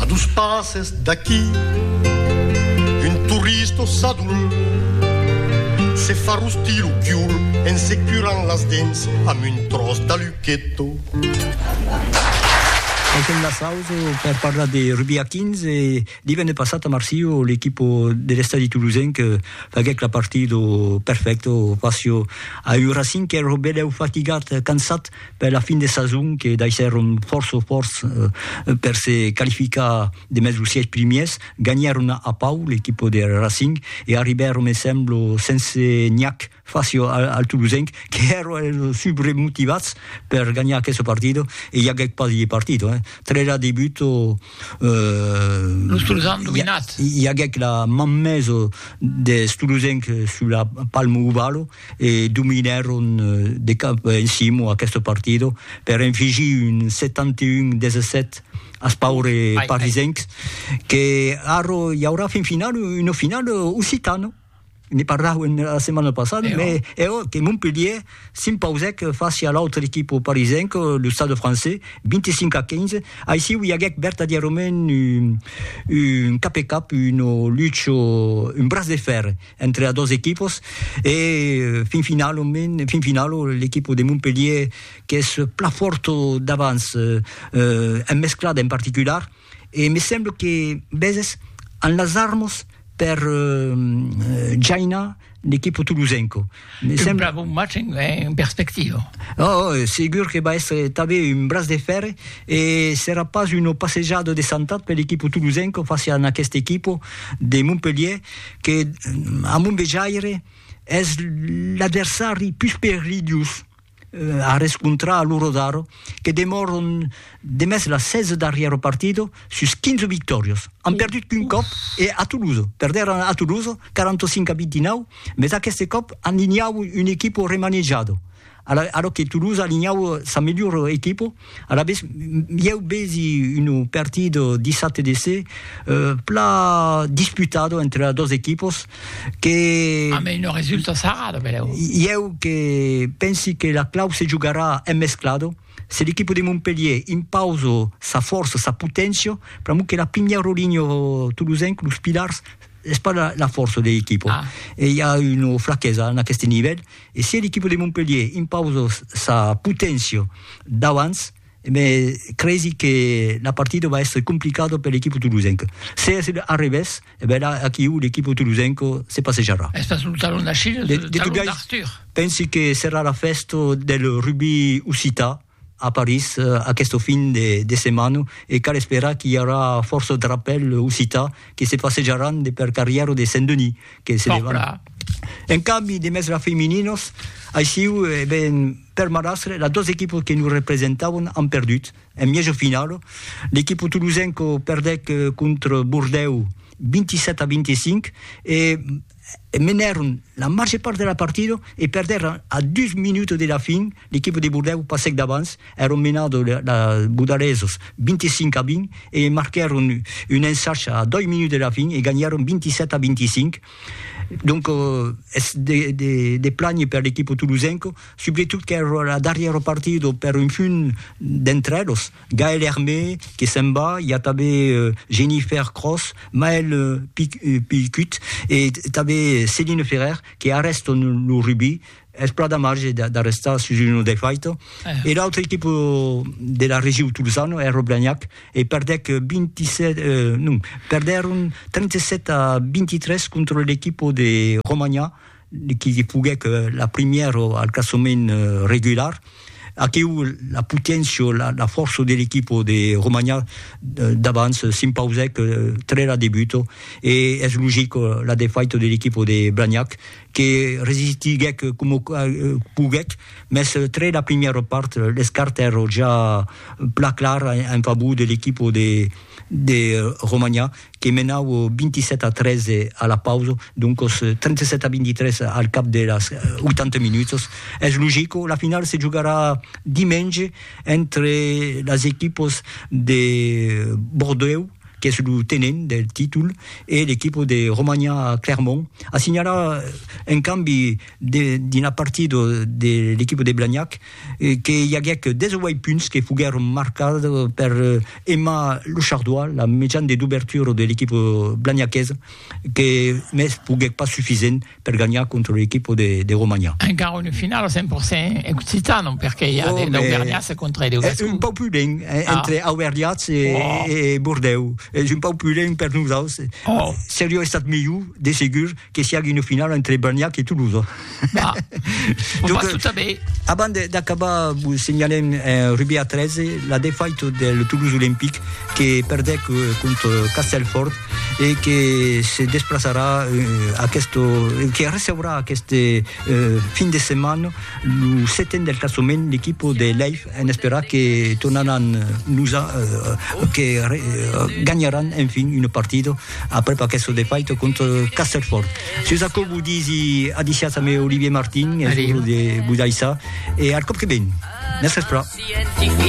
A dos passes d'aquí un turista sadul se fa rostir lo cul en se curant las dents amb un tròç d'aluqueto. Tanquem la sausa per parlar de rugbi a 15 e divenne passat a Marsilh l'equipa de l'Estadi Toulousenc faguèc la partida perfècta face a un Racing qu'èra belèu fatigat, cansat, per la fin de sason que daissèron fòrça fòrç per se qualificar demest los sièis primièrs, ganhèron a Pau l'equipa de Racing e arribèron me semblo sense nhac fàcia al Tolosenc que èra subremotivats per ganhar aquesta partida e i aguèt pas de partida eh. Trèra de but i aguèt la manmesa deth Tolosenc sus la palma ovala e dominèron de cap en cimo aqueste partido per enfigir un 71 17 as paures parisencs que ara i aurà fin final una final occitana ne parlàuem la setmana passada me eo que Montpellier s'impausèc fàcia a l'autre equipa parisenca lo stade francés 25 a 15 aicí i aguèc vertadièrament un cap e cap una lucha un braç de fèrre entre a dos equipos e fin finalament fin finalo l'equipo de Montpellier qu'es pla fòrt davans eh, en mesclada en particular e me sembla que veses an las armas per eh jainar l'equipo tolosenco Me que sembla bon match en, en perspectiva. Oh, segur que va estre tanben un braç de fèrre e serà pas una passejada de santat per l'equipo tolosenca fàcia en aquesta equipo de Montpelhier que, a mon vejaire, es l'adversari pus perilhós. a rescontrar lo Rodaro que demòron demest las 16 darrièro partido sus 15 victòrios. An perdut qu'un còp e a Toulouse, perdèron a Toulouse 45 a 29, mes aqueste còp alinhau un equipo remanejado, a lo que Toulouse alinhau sa melhora equipo, Alavetz, ieu vesi un partit dissabte de se pla disputat entre las dos equipos que... A mei non resulta sarrat, benlèu. Ieu que pensi que la clau se jogarà en mesclat, se l'equipo de Montpelhier impausa sa fòrça, sa poténcia, pr'amor que la primièr rolinha tolosenc, los pilars, es pas la fòrça de l'equipo. E i a una flaquesa en aqueste nivèl E se l'equipa de Montpelhier impausa sa poténcia d'abans, me cresi que la partida va èstre complicada per l'equipa tolosenca. Se es a revés, e ben la, aquiu, l'equipa tolosenca se passejarà. Es pas lo talon d'Achilles, es lo talon d'Arthur. Pensi que serà la fèsta del rugbi occitan, a París aqueste fin de setmana e cal esperar qu'i aurà fòrça drapèls occitans que se passejaràn de per carrièra de Saint-Denis que se levarà un cambi de mèsla femininas aissiu e ben per Malastre las dos equipas que nos representavan an perdut en mièja finala l'equipa tolosenca perdèc contra Bordèu 27 a 25 e menèron la màger part de la partida e perdèron a dus minuts de la fin, l'equipa de Bordèu passèc davans, èron menada la Budalesos 25 a 20 e marquèron un ensach a doi minuts de la fin e ganhèron 27 a 25. Donc es de de de plànher per l'equipa tolosenca, subretot qu'èra la darrièra partida per un punt d'entre elos. Gaël Hermé que se'n va, i a tanben Jennifer Cross, Maël Pilcut e tanben Céline Ferrer que arrèstan lo rugbi, es plan de marge d'arrestar sus una defaita, e l'autra equipa de la region Tolzana, Air Blagnac, e perdèc 27, non, perdèron 37 a 23 contra l'equipa de Romanha, qui li foguèc la primièr o al classament regular, aquiu la poténcia o la fòrça de l'equipo de Romanha d'abans s'impausèc tre la debuta e es logic la defaita de l'equipo de Blagnac que resistiguèc coma poguèc mès tre la primièra part les cartes èran ja plan claras en favor de l'equipo de Romanha que menaue 27 a 13 a la pausa, doncos 37 a 23 al cap de las 80 minutas. Es logico, la final se jogarà dimenge entre las equipas de Bordèu, qu'es lo tenent del títol, e l'equipa de Romania a Clermont. A signalar, en cambi, dins la partida de l'equipa de Blagnac, que i aguèc 18 punts que foguèron marcats per Emma Lechardois, la mejan de dobertura de l'equipa blagnaquesa, que mès foguèc pas sufisent per ganhar contra l'equipa de Romanha. Encara una finala 100% occitana, perque i a d'auvergnats contra e de gascons. Es un pauc pudent entre auvergnats e Bordèu, es un pauc pudent per nosaus. Seriá estat melhor, de segur, que siágue una finala entre Blagnac e Tolosa. Bah, on Donc, va tout à bé. Avant d'acabar, vous signalem un rugby à 13, la défaite del Toulouse Olympique que perdec euh, contre Castelfort et que se desplaçarà euh, aquest, euh, que receurà aquest euh, fin de setmana le setèn del classement l'equip de Leif en esperar que tornaran nous a, euh, que re, euh, ganharan enfin une partida Après pas qu'esso de faito contra Castelfòrt. Sus aquò vos disi adicias ame Olivier Martin, es un de Budaissa e al còp que ven. Mercés Pra.